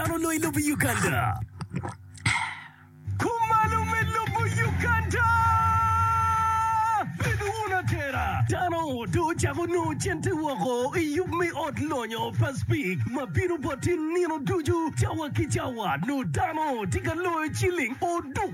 Ano onongo ilubo i Uganda? Kumalo me lubo Uganda! Bed wun atera! Dano dong ocako nongo cente woko i yub me ot lonyo pa Spik ma bino boti nino ducu cawa ki cawa. Nongo dano tye ka loyo ciling oduk.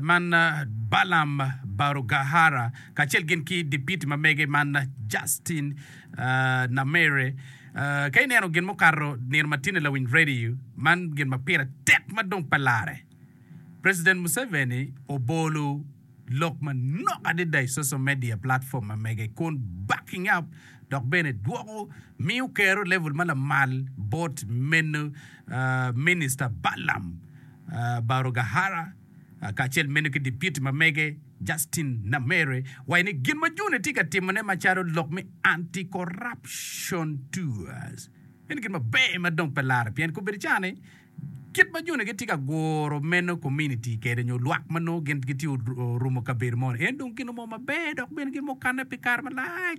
man Balaam Barugahara kacel gin ki dipiti ma mege man Justin Nameere. Ka ineno gin mukato nino matinni lawiny radio, man gin ma pire tek ma dong pe larre. President Museveni obolo lok manok adada i social media platform ma mege kun backing up dok bene dwoko miyo Kero level ma lamal bot meno Minister Balaam. Barugahara, kacel meno ki dipiti ma mege, Justin Nameere, waco ni gin ma June tye ka timone macalo lok me Anti-Corruption Tours en gin maber ma dong pe larre pien kobedo cani kit ma June gitye ka guro meno kominiti kede nyo lwak ma nongo gin gitye orumo kabedo moni en dong gin mo maber dok bene gin mukanne pi kare malac.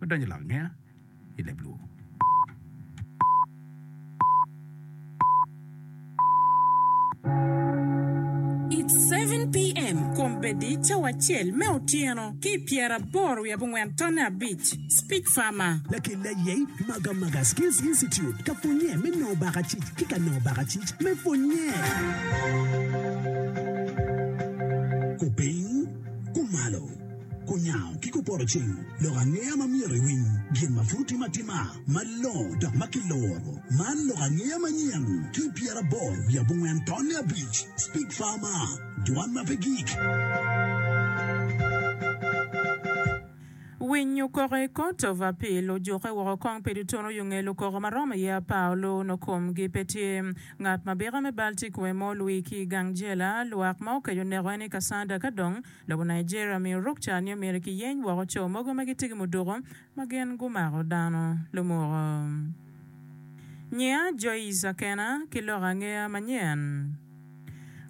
me donyo i lok angeya i leb lwur. It seven PM, Kombeddi cawa acel me otyeno, ki i pyeraboro wiye abongwen tonne abic, Speech Farmer. Lakelli aye i Maga Maga Skills Institute ka pwonnye me nongo bakacic ki ka nongo bakacic me pwonnye. Kupiny kumalo. Kunyango ki kupoto cing lok angeya ma myero iwiny gin ma pud otime atima malongo dok ma kiloro. Man lok angeya manyen ki pyeraboro wiye abongwen tonne abic. Speak Farmer, Dwan ma pe gik. Winy okoko i Court of Appeal ojuke woko kong pi dutono yo ngel okoko ma romo iye apar olu no kom gi pe tye. Ngat ma bika me bal tye kome mo olwii ki i gang jela lwak ma okeco neko en i Kasanda ka dong Lobo Nigeria omiyo ruk ca ni omyero kiyeny woko co mogo ma gitye ki muduku ma gin gumako dano lumuko. Nyiya Joyce Akena ki lok angeya manyen.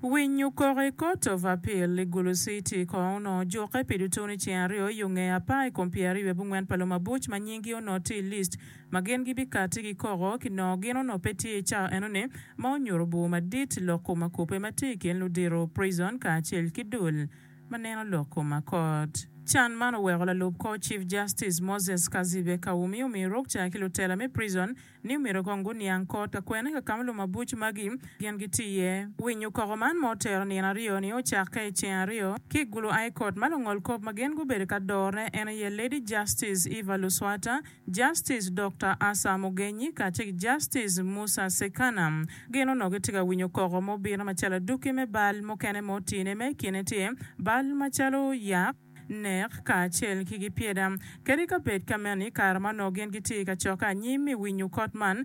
Winyo koko i Court of Appeal i Gulu City kong onongo jukke pi dutu ni ceng aryo i onge apar i kom pyeraryo i abungwen pa lumabuc ma nyinggi onongo tye i list ma gin gibikatti gikoko ki nongo gin onongo pe tye i cawa enoni ma onyuto bur madit lok kom ma kubbe ma tye i kin ludito, prison, kacel ki dul ma neno lok kom ma kot. Can man oweko lalub kor Chief Justice Moses Kazibe Kawumi omiyo ruk ca ki lutela me prison ni omyero kong guniang kot ka kwene ka kama lumabuc magi gin gitye iye. Winyo koko man ma otero nino aryo ni ocakke i ceng aryo ki gulu aye kot ma lungol kop ma gin gubedo ka dorone en aye Lady Justice Eva Luswata Justice Dokta Asa Mugenyi kacel ki Justice Musa Sekana gin onongo gitye ka winyo koko mubino macalo adwoki me bal mukene ma otine ma i kine tye bal macalo yak, nek kacel ki gipyeda. Kadi ka bed kameno i kare ma onongo gin gitye i kacokke anyim i winyo kot man,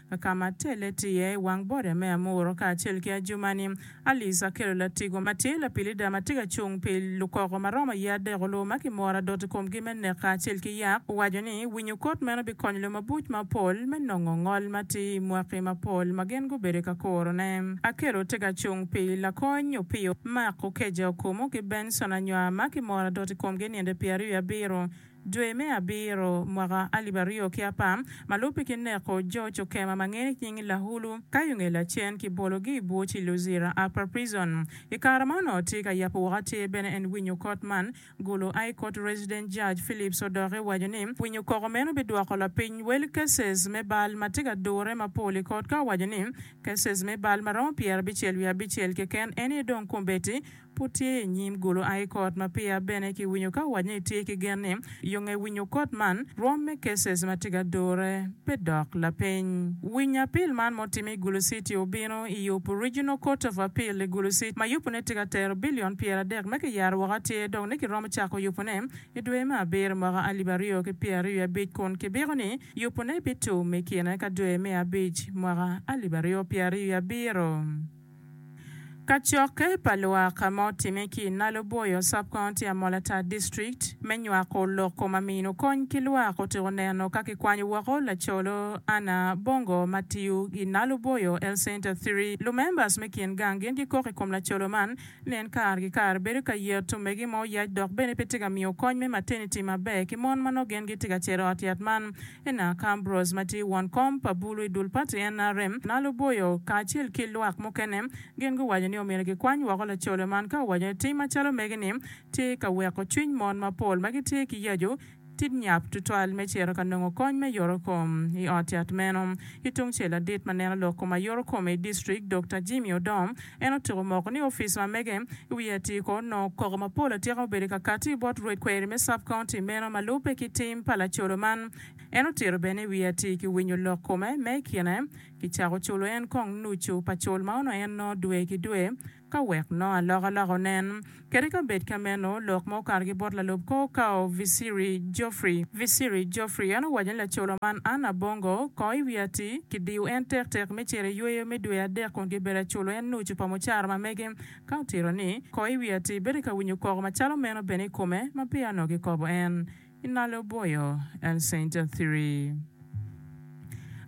Ka ma telle tye iye i wang boda me Amuru kacel ki ajuma-ni, Alice akelo latigo ma tye lapilida ma tye ka cung pi lukoko ma romo ye adek-lu ma kimoro adot i komgi me nek kacel ki yak. Owaco ni winyo kot meno bikonyo lum mabuc mapol me nongo ngol ma tye i mwaki mapol ma gin gubedo ka kurone. Akelo tye ka cung pi lakony Opio, Mark, Okeja, Okumu, ki Benson, anywar ma kimoro adot i komgi i ninde pyeraryo abiro. Dwe me abiro mwaka alip aryo ki apar, ma lubbe ki neko jo cokema ma ngene ki nying Lahulu, Kayunge Lacen ki bologi i bur ci Luzira Upper Prison. I kare ma onongo tye ka yabo woko atir bene en winyo kot man, Gulu High Court Resident Judge Phillips odoke waco ni winyo koko meno bidwoko lapiny wel cases me bal ma tye ka dure mapol i kot ka owaco ni cases me bal ma romo pyerabicel wiye abicel keken en aye dong kombeddi Pud tye i nyim gulu aii court ma pia bene ki winyo ka owac ni tye ki gen ni yonge winyo court man rwom me cases ma tye ga dure pe dok lapeny winyo apil man mo time i gulu city obino i yub regional court of appeal i gulu city ma yupu ne tye ga tero billion pyera adek me ki yaro woko atir dong ni ki romo cako yupu ne i dwe me abiro mwaka alib aryo ki pyer aryo abic kun ki biko ni yupu ne bi tum i kine ka dwe me abic mwaka alib aryo pyer aryo abiro. Kacokke pa lwak ma otimme ki i Naloboyo sub county Amolatar district me nywako loko ma mino kony ki lwak otyeko neno ka kikwanyo woko lacolo Anna Bongo ma tiyo i Naloboyo Health Center Three. Lumembers me kin gang gin gikok i kom lacolo man ni en kare ki kare bedo ka yeto megi ma oyac dok bene pe tye ka miyo kony me maternity maber ki mon ma nongo gin gitye ka cito ot yat man Ena ka Ambrose ma tye won kom pa bulu i dul pati NRM ma luboyo kacel ki lwak mukene gin guwaco ni omyero gikwany woko lacolo man ka owaco ni tim macalo megi-ni tye ka weko cwiny mon mapol ma gitye ki yacu tit nyap tutwal me cito ka nongo kony me yoto kom i ot yat meno. Ki tungcel ladit ma neno lok kom ma yoto kome i district Dokta Jimmy Odom En otyeko moko ni opic ma mege i wi atyeko nongo koko mapol atyeka obedo i kakati bot rwed kweri me sub county meno ma lubbe ki tim pa lacodo man. En otito bene i wi atyeki winyo lok kome me i kine ki cako culo en kong nucu pa cul ma onongo en nongo dwe ki dwe ka wek nongo alokaloka onen. Kadi ka bed ka meno, lok ma okato ki bot lalub kor okawo Visiri Geoffrey. Visiri Geoffrey en owaco ni lacola man Anne Abongo, kong i wi ati, kidiyo en tek tek me cito i yweyo me dwe adek kun gibedo aculo en nucu pa mucara ma mege. Ka otito ni, kong i wi ati, bedo ka winyo koko macalo meno bene i kome ma peya onongo kikobo en. I nalo boyo en ceinta thiri.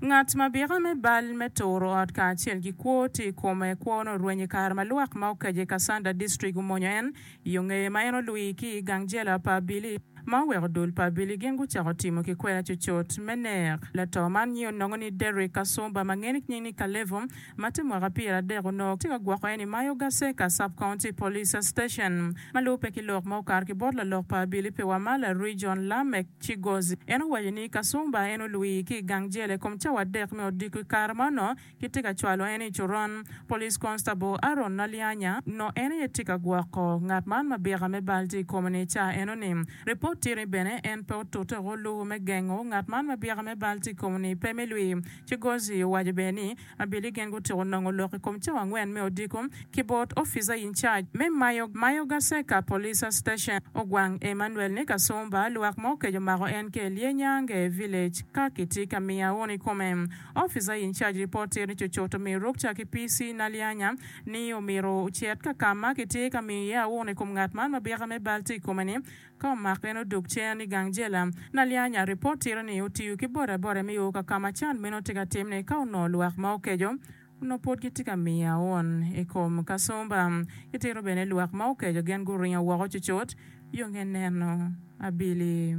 Ngat ma bika me bal me turo ot kacel ki kwo tye i kome. Kwone orweny i kare ma lwak ma okaco i Kassanda District omonyo en i yo ngeye ma en olwii ki i gang jela pa Abili ma oweko dul pa Abili gin gucako timo ki kwena cucut me nek. Lato man nyinge onongo ni Derrick Kasumba ma ngene ki nying ni Kalevo ma tye mwaka pyera adek onongo tye ka gwoko en i Mayo Gaseka Sub-County Police Station. ma lubbe ki lok ma okato ki bot lalok pa abili pi Wamala, Region, Lameck Chigozi, en owaco ni Kasumba en olwii ki i gang jel i kom cawa adek me odiko i kare ma onongo kitye ka cwalo en i coron. Police Constable Aaron Nalianya onongo en aye tye ka gwoko ngat man ma bika me bal tye i kome ni i cawa enoni. Ripot tye ni bene en pe otute woko luwu me gengo ngat man ma bika me bal tye i kome ni pe me lwii. Chigozi owaco bene ni, Abili gin gutyeko nongo lok i kom cawa angwen me odiko ki bot oficer in charge me mayo Mayoga Seka Police Station Ogwang Emmanuel ni Kasumba lwak mo okeco mako en ki Elie Nyange Village ka ki tye ka miyo aun i kome. Oficer in charge report tyer ni Cocoto omiyo Rukca ki PC Nalianya ni omyero ocit ka ka ma ki tye ka miyo iye aun i kom ngat man ma bika me bal tye i kome ni Ka omako en odok cen i gang jela. Nalyanya, ripot tito ni otiyo ki bodaboda me o ka ka ma can meno tye ka timne ka onongo lwak ma okeco onongo pud gitye ka miye aun i kom kacumba. Itito bene lwak ma okeco gin guringo woko cucut yo nge neno abili.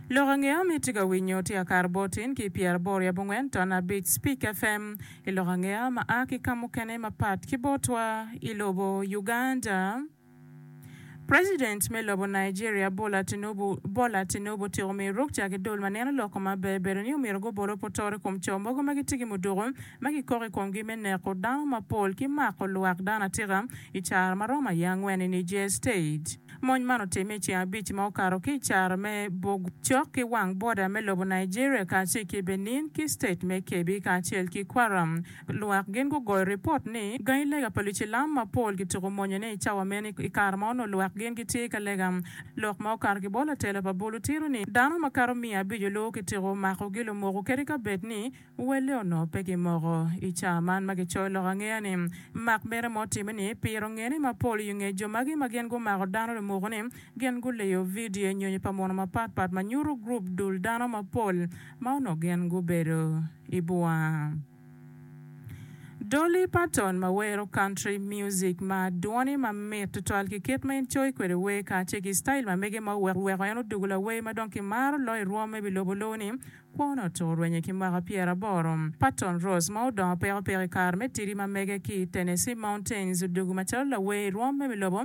Lok angeya ma itye ka winyo tye Akar Botin ki Pyeraboro yab Ongwen Ton Abic Speak FM i lok angeya ma a ki ka mukene mapat ki botwa i lobo Uganda. President me lobo Nigeria Bola Tinubu Bola Tinubu otyeko miyo rwok ca ki dol ma neno lok ko ma ber bedo ni omyero gubol opotoro i kom co mogo ma gitye ki muduku ma kikoko i komgi me neko dano mapol ki mako lwak dano atika i caro ma romo aye angwen i Niger State. Mony man otimme i ceng abic ma okato ki i caro me bog cok ki wang boda me lobo Nigeria kacel ki Benin ki state me Kebbi kacel ki Kwara. Lwak gin gugoyo ripot ni gangi lega pa lucilam mapol kituko monyone i cawa meno. I kare ma onongo lwak gin gitye ka lega, lok ma okato ki bot latela pa bulu tito ni dano makato miya abico luwo kitiko omako gi lumoko kadi ka bed ni welle onongo pe gimoko. I cawa man ma kicoyo lok angeya ni mak mere ma otime ni piro ngene mapol i nge jo magi ma gin gumako dano lumoko ni gin guleyo vidio nyonyo pa mono mapat pat ma nyuto gurup dul dano mapol ma onongo gin gubedo i bwang. Dolly Parton ma wero country music ma dwone ma mit tutwal ki kit ma en coyo kwede wer kacel ki style ma mege ma oweko weko en odugo lawer ma dong kimaro loyo i rwom me bilobo lowo ni kwone otuko rwenye ki mwaka pyera aboro. Parton Rose ma odongo peko peko i kare me tidi ma mege ki Tennessee Mountains odugo macalo lawer i rwom me bilobo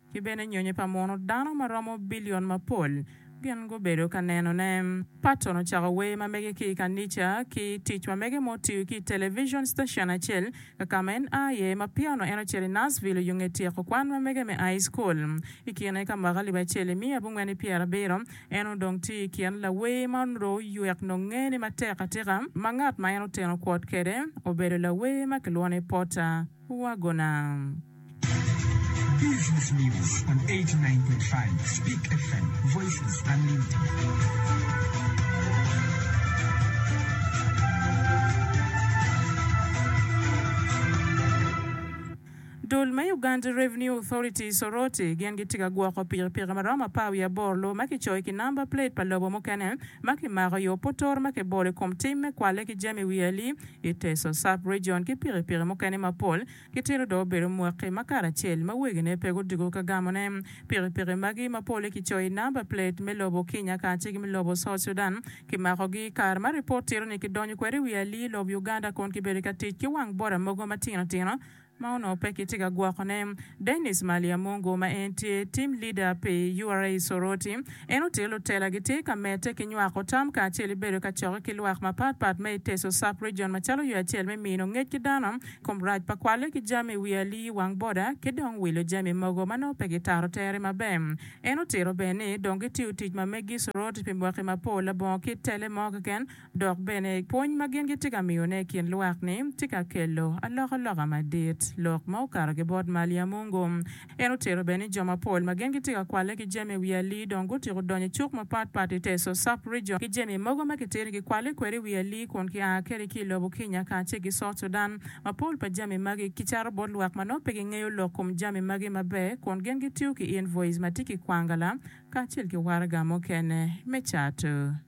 ki bene nyonyo pa muno dano ma romo bilion mapol gin gubedo ka nenone. Patton ocako wer ma mege ki i kanica ki tic ma mege ma otiyo ki i televicon citacion acel ka ka ma en a iye. Ma piano en ocito i Nashville oyo nge tyeko kwan ma mege me ai cukul. I kine ka mwaka alip acel imiya abongwen ni pyera abiro, en odong tye i kin lawer ma onro oywek nongo ngene matek atika ma ngat ma en oteno kwot kwede obedo lawer ma kilwongo ni Porter. Dul me Uganda Revenue Authority, Soroti, gin gitye ka gwoko pikipiki ma romo apar wiye aboro lubo ma kicoyo ki namba plate pa lobo mukene ma kimako i Opotoro ma kibolo i kom tim me kwalle ki jami wiye li I Teso Sub-Region ki pikipiki mukene mapol kitito dong obedo mwaki ma karacel ma wegine pe gudugo ka gamone. Pikipiki magi ma polle kicoyo i namba plate me lobo Kinya kacel ki me lobo South Sudan kimakogi i kare ma ripot tito ni kidonyo kwede i wi alii lob Uganda kun kibedo ka tic ki wang boda mogo matino tino ma onongo pe kitye ka gwokone. Dennis Maliyamungu ma en tye Team Leader pi ura Soroti, en ote lutela gitye ka medde ki nywako tam kacel ki bedo ka cokke ki lwak mapat pat ma i Teso Sub Region macalo yo acel me mino ngec ki dano i kom rac pa kwalle ki jami i wi alii wang boda ki dong wilo jami mogo ma nongo pe gitaro tere maber. En otito bene ni dong gitiyo tic ma meggi i Soroti pi mwaki mapol labongo kit tele mo keken Dok bene, pwony ma gin gitye ka miyone i kin lwak-ni tye ka kelo alokaloka madit, lok ma okato ki bot mal ya Mungu. En otero bene ni jo mapol ma gin gitye ka kwalle ki jami i wi alii dong gutyeko donyo i cuk mapatpat i te Sosop Region ki jami mogo ma kitito ki kwalle kwede i wi alii kun kia kwede ki i lobo Kenya kacel ki South Sudan. Mapol pa jami magi kicato bot lwak ma nongo pe gingeyo lok kom jami magi maber kun gin gitiyo ki invoice ma tye ki kwangala kacel ki waraga mukene me cato.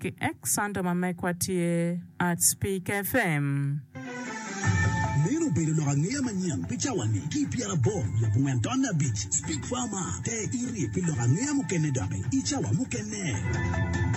Ki ek Santa ma mekwa tye Arts Peak FM. Meno obedo lok angeya manyen pi cawa-ni. Ki i pyeraboro lub ngen tonne abic, Speak Farmer, te iri pi lok angeya mukene doki i cawa mukene.